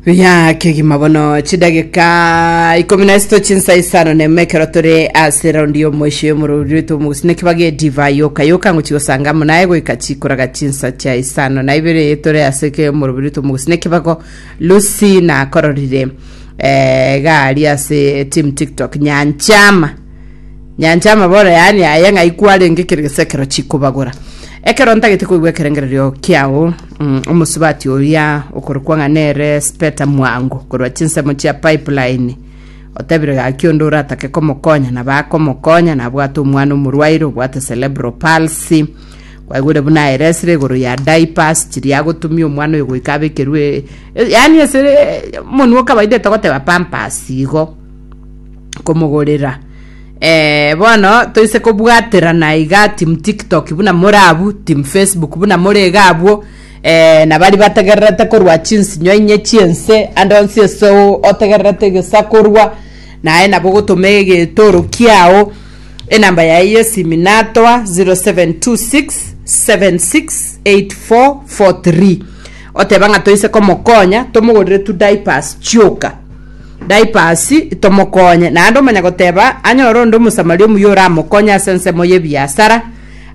Buya kegima bono chidageka ikomi na isito chinsa isano na ime ekero tore ase raundi ya omoisho y'omorori rwetu omogusina ekibaga edivai yoka yoka ngochi gosanga amo naye goika chikoraga chinsa chia isano na ibere tore ase ke omorori rwetu omogusina ekibago lucy nakororire eh, gari ase team tiktok nyanchama Nyancha amabora yaani aye ng'ai kwarenge kere gese ekero chikobagora. Ekero ntagete koigwa ekerengererio kiao, mm, omosubati oria okorokwa ng'a nere Speta Mwango korwa chinsemo chia Pipeline otebire gaki onde oratake komokonya nabo akomokonya nabwate omwana omorwaire obwate cerebral palsy kwaigwire buna aeresire igoro ya diapers chiria agotumia omwana oyo goika abekerwe e- yaani ase omonwa o kawaida etogoteba pampers igo komogorera Eh, bono toise kobwaterana iga team tiktok buna more abwo team facebook buna more iga abwo eh, na bari bategererete korwa chinsinyo inye chiense ande onsi ase o- otegererete egesakorwa naye nabo gotoma egetoro kiao enamba yaye yesimi natoa 0726 768443 oteba ng'a toise komokonya tomogorere tu diapers chioka Diapers, tomokonye. Naende omanya goteba anyore onde Omosamaria omuya oramokonye ase ensemo y'ebiasara,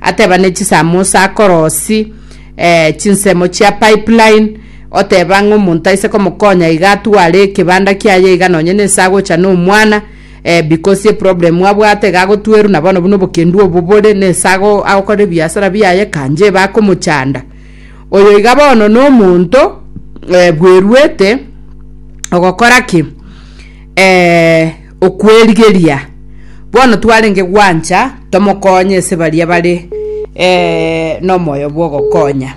ateba ne chisamosa akorosi eh, chinsemo chia pipeline, oteba ng'a omonto aise komokonya iga atware ekebanda kiaye iga nonye nense agocha na omwana, eh, because eproblem abwate iga agotwerwa na bono buna obokendu obo bore nense ago agokora ebiasara biaye kanje iba akomochanda. Oyo iga bono nomonto eh, bweruete ogokora ki? Eh, okwerigeria. Bono twarenge gwancha tomokonye ase baria bare eh, nomoyo bw'ogokonya.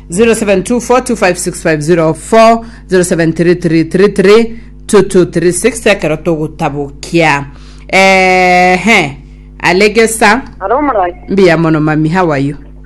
0724256004 0733332236 ekero togotabokia ehe alegesa Aro omorai. mbuya mono mami how are you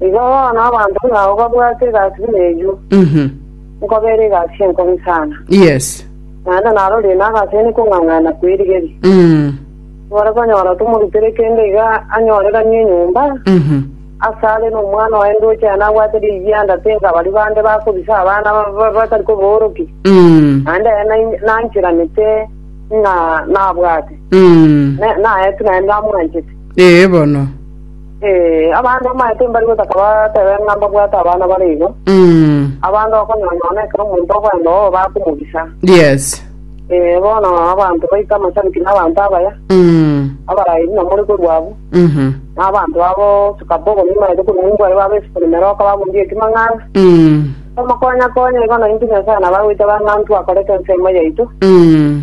Igo bono abanto ng'ao babwate egasi buna eyio, Mhm. nkoba ere egasi enkobe sana, Yes. naende narorie nagase nekong'ang'ana kwerigeria. Mm. Nore konyora tomorutere kende iga anyoreganie enyomba, Mhm. ase are nomwana oye ndoche aye nabwate rigianda tenga baria bande bakobisa abana ba- ba- batari koboorokia, Mm. naende aye nai- nanchiranete ng'a nabwate, Mm. Ne- naye tu naye ndamwanchete. Ee bono. Ee, abande omanyete mbari gotaka batebe ng'a mbabwate abana bare igo, Mm. abande okonyonyona ekero omonto okwenda oo bakomogisa. Yes. Ee, bono abanto baito amashabiki na abanto abaya, Mm. abarairi na more korwa abwo, Mhm. na abanto abo sikabogo nimanyete korwa omonto bare babesukuri meroka babundia ekimang'ana. Mm. Omokonya-konya igo naintwe Nyasae nabagoita bang'antu akorete ensemo yaito, Mm.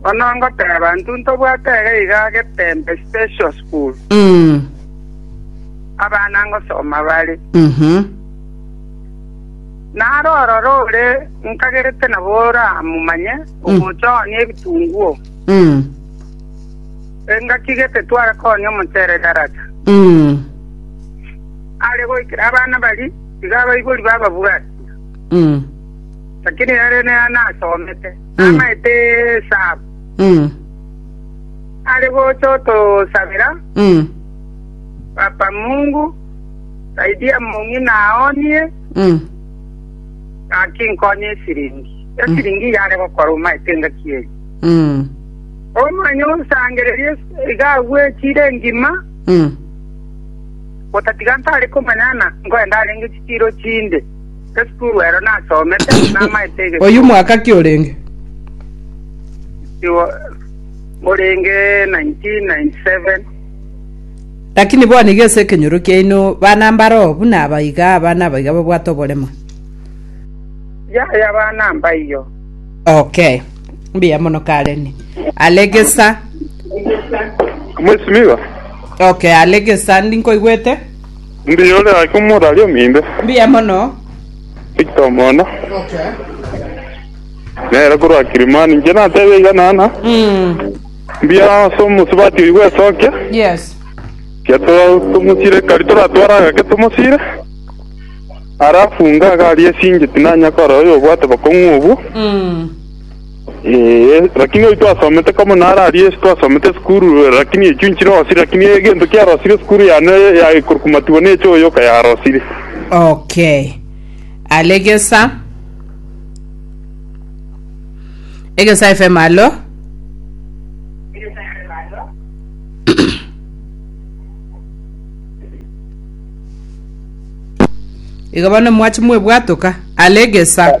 Bono ngoteba, intwe ntobwate ere iga getembe, special school, abana ngosoma bare. Naro ororo ore nkagerete nabo oramomanye, ogocha oonie ebitunguo, engaki gete tware koonia omochere Darata. Are goikera abana baria, iga abaibori bababwatia, lakini ere nere nasomete. namaete esaabo, Mm. are gocha otosabera, Mm. Papa Mungu, saidia mong'ina nao nie, Mm. gaki nkonye esiringi. Esiringi yare gokora omaete engaki eye. Mm. Omanye osangererie iga agwechire engima, Mm. otatiga ntare komanyana nkoenda arenge chitiro chinde. Esukuru ero nasomete, namaete egesuo. Oyio mwaka ki orenge? Igo orenge 1997. Lakini bono iga ase ekenyoro kiaino bana mbaroo buna aba iga abana aba iga babwate oborema. Yaya bana mbaiyo. Okay. Mbuya mono Karen. Alegesa. Mwesimigo. Okay, alegesa ndinkoigwete. Mbuya ore ake omonto aria omino. Mbuya mono. Victor Omona. Nere korwa Kilimani. Inche natebe iga nana. Mbuya ase omosubati oyi bw'esokia. Yes. Kia to- tomosire kari toratwara agake tomosire. Arafu ngaga aria esingeti nanya kora oyo obwate bokong'u obwo. Ee, rakini oyo twasomete komo naro aria ase twasomete esukuru, rakini echio nchirosire, rakini egento kiarosire esukuru yane ya ikorukumatiwa n'echo oyoka yarosire. Okay. Ale gesa. Egesa FM alo. Iga bono mwachi mwebwatoka. Ale gesa.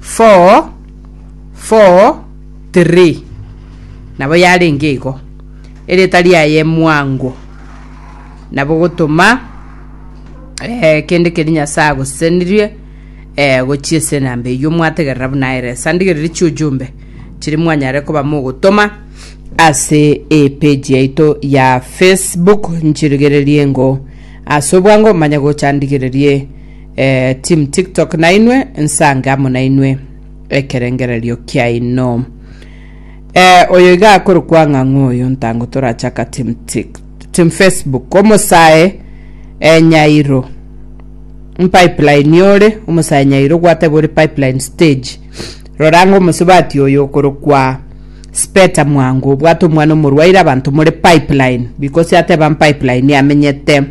four four three nabo yarenge igo erieta riaye mwango nabo gotoma eh, kende keri nyasaye agosesenirie eh, gochia ase namba eyio mwategerera buna aere sandigereri chiujumbe chiri mwanyare koba mogotoma ase epeji yaito ya facebook nchirigererie ngo ase obwango manye gochandigererie Eh, team TikTok nainwe nsange amo nainwe ekerengererio kiaino. Eh, oyo iga akoro kwang'ang'u oyo ntango torachaka team Tik team Facebook omosae eh, Nyairo pipeline yore omosae Nyairo gwateba ore pipeline stage roranga omosubati oyo okoro kwa speta mwango obwate omwana omorwaire abanto more pipeline because ateba pipeline amenyete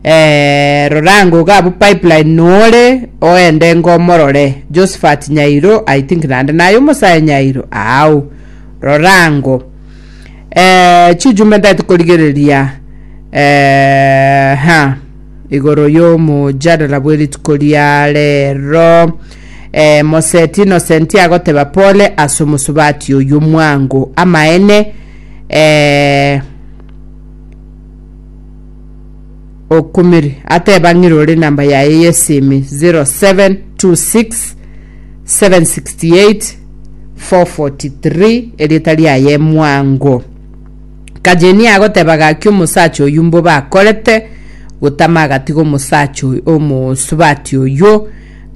Eh, rora ngoga abu pipeline nore oende ngomorore Josephat Nyairo I think nande naye omosae Nyairo ao rora ngo eh, chiujume ndati korigereria eh, ha igoro y'omojadala bw'erituko ria rero eh, moseti inosenti agoteba pole ase omosubati oyo mwango amaene eh, okumire ateba ng'ire ore namba yaye yesimi 0726 768 443 erieta riaye mwango kajeni agoteba gaki omosacha oyu mbo bakorete gotama agatiga omosacha oyu omosubati oyo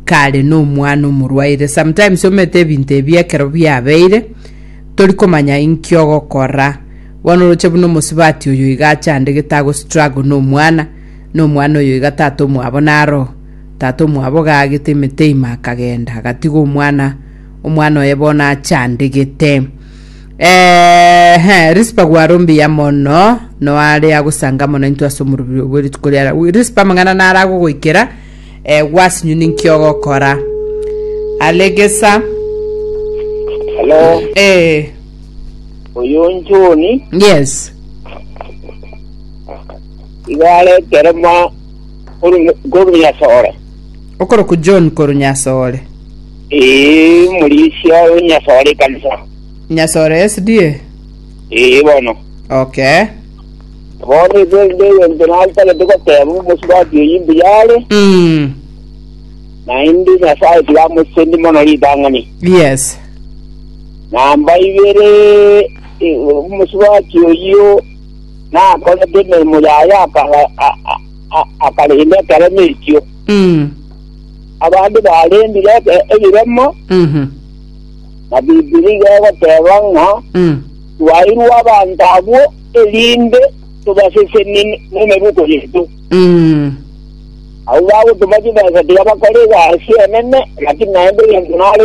kare n'omwana omorwaire sometimes omete ebinto ebi ekero biabeire tori komanya inki ogokora Bono oroche buna omosubati oyo iga achande gete agostruggle na omwana, na omwana oyo iga tata omwabo naroo. Tata omwabo gaagete emete ime akagenda, agatiga omwana, omwana oye bono achande gete. Eehe, Rispa gware ombiya mono, noare agosanga mono intwe ase omorobio oyo bwe rituko riare. Rispa amang'ana nare agogoikera, eh, gwasinywe ninki ogokora. Alegesa, Hello. eh, Oyo John Yes. iga areterema korunyasore. Okoroku John koru Nyasore. Ee, omorisia o Nyasore ekanisa. Nyasore SDA. Ee, bono. Okay. Bono ese nde egento nantagete goteba omosubati oyi mbuya are, Mm. naende Nyasae tiga amosende mono ritang'ani. Yes. Namba ibere omosubati oyio nakorete emeremo yaye akarenda ekeremo ekio. Abande barendire ebiremo na Bibilia iga egoteba ng'a twairwe abanto abwo erinde tobasesenie nemebuko yaito. Abwo bagotoma chibesa tiga bakora egasi enene, lakini naende egento nare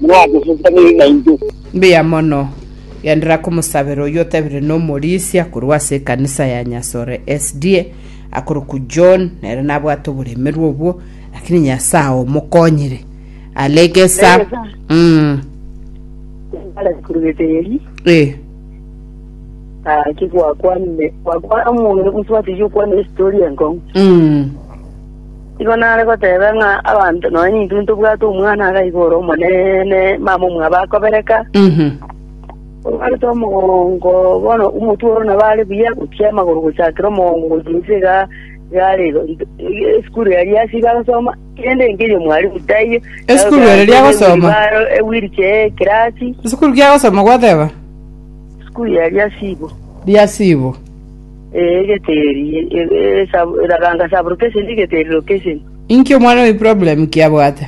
mwagosesanire naintwe. Mbuya mono. Genderera komosabera oyio otebire nomorisia korwa ase ekanisa ya Nyasore SDA akorokwa John nere nabwate oboremerwa obwo lakini Nyasae omokonyire are gesa Gesa. mm. Nare kurugete eri. eh. Ah, ki gwakwanire? Gwakwana omonto gosubati yokwana historia enkong'u. mm. Nigo nare goteba ng'a abanto nonya nintwe ntobwate omwana agaiga ore omonene, mama omwabo akobereka, obarete omogongo, bono omotwe oro nabo are buya gochia amagoro gochakera omogongo gochia inse iga, iga are igo int- ige- esukuru eria ase iga agosoma, kende nkeria mwalimu taiyo. Esukuru ere eria agosoma? Ewirichair ekirasi, esukuru kiagosoma gwateba esukuru eria sibo. riasibo Egeteri, eraganga sublocation, egeteri location. Inki omwana oye problem ki abwate?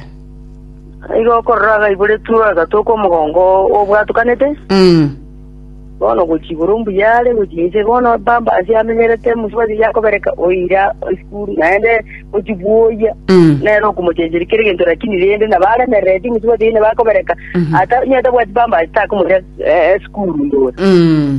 Igo okorora iga aiboretwe agatoka omogongo obwatukanete, Mm. bono gochia igoro mbuya are gochia inse bono pampers amenyerete mosubati iga akobereka oira esukuru naende gochia bwoyia Mm. nere okomochencheria kera egento lakini rende nabo aremerereti mosubati nabo akobereka ata onye tabwati pampers takomoira eh, esukuru ndoe Mm.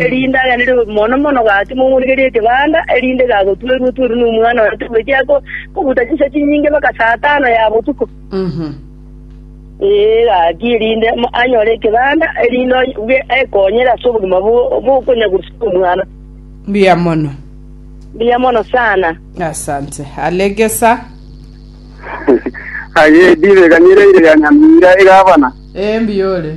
erinde aganere mono mono gake momorigerie ekebanda, erinde gagotwerwa-twerwa nomwana one togoechia ko- kobuta chinsa chinyinge mpaka saa tano ya botuko. Ee, gaki erinde mo- anyore ekebanda, erinde onye- bwe- ekonyere ase obogima bo- bokonyagorusia omwana. Mbuya mono. Mbuya mono sana. Asante. Alegesa. Aye dibe ganyira ire ya Nyamira egabana. Ee, mbuya ore.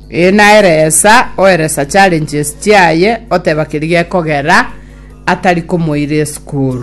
Ee, naeresa, oeresa challenges chiaye, oteba keria gekogera, atari komoira esukuru.